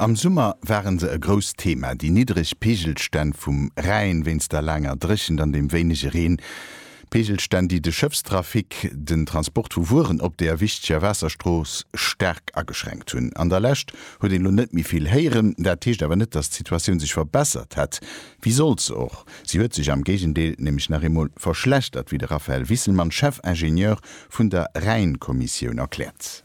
Am Summer ware se e grousst Thema, déi niddreg Peegelstänn vum Rhäin wéinst der laanger Dréchent an dem wéinege Reen. Peegelstänn, déi de Schëffstrafic, den Transport vu Wueren op deer wichteger Waasserstrooss, staark ageschränkt hunn. An der Lescht huet een elo net méi vill héieren. Dat heescht awer net, datt d'Situatioun sech verbessert hätt. Wéi sollt se och? Si huet sech am Géigendeel nämlech nach eemol verschlechtert, wéi de Raphaël Wisselmann, Chef-Ingenieur vun der Rhäin-Kommissioun, erkläert.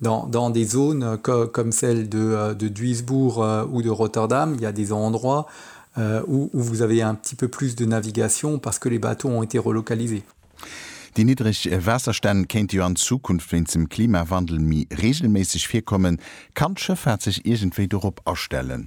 Dans, dans des zones co, comme celle de, de Duisbourg ou de Rotterdam, il y a des endroits où, où vous avez un petit peu plus de navigation parce que les bateaux ont été relocalisés. Déi niddreg Waasserstänn kéinte jo an Zukunft wéinst dem Klimawandel méi reegelméisseg virkommen. Kann d'Schëffaart sech iergendwéi dorop astellen?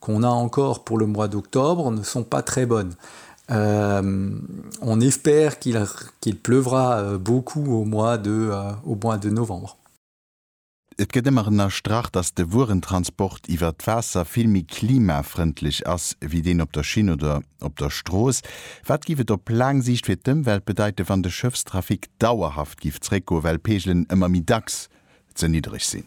qu'on a encore pour le mois d'octobre ne sont pas très bonnes. On espère qu'il pleuvra beaucoup au mois de au mois de novembre. Et gëtt ëmmer ënnerstrach, datt de Wuerentransport iwwert d'Waasser vill méi klimafrëndlech ass wéi deen op der Schinn oder op der Strooss. Wat géif et op laang Siicht fir d'Ëmwelt bedeiten, wann de Schëffstrafic dauerhaft géif zréckgoen, well d'Peegelen ëmmer méi dacks ze niddreg sinn?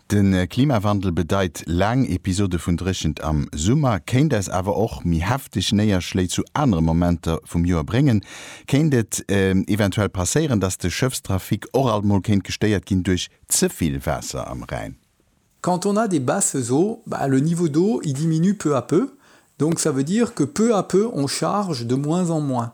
De Klimawandel bedeit laang Episode vun Dréchent am Summer, kéint eis awer och méi hefteg Néierschléi zu anere Momenter vum Joer bréngen. Kéint et eventuell passéieren, dass de Schëffstrafic och alt mol kéint gestéiert ginn duerch ze vill Waasser am Rhäin? Quand on a des basses eaux, bah, le niveau d'eau, il diminue peu à peu, donc ça veut dire que peu à peu on charge de moins en moins.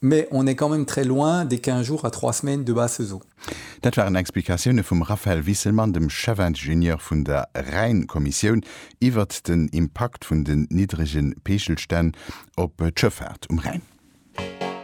Mais on est quand même très loin des quinze jours à trois semaines de basse saison. Dat waren Explikatioune vum Raphaël Wisselmann, dem Chefingenieur vun der Rhäin-Kommissioun, iwwert den Impakt vun den niddrege Peechelstänn op d'Schëffaart um Rhäin.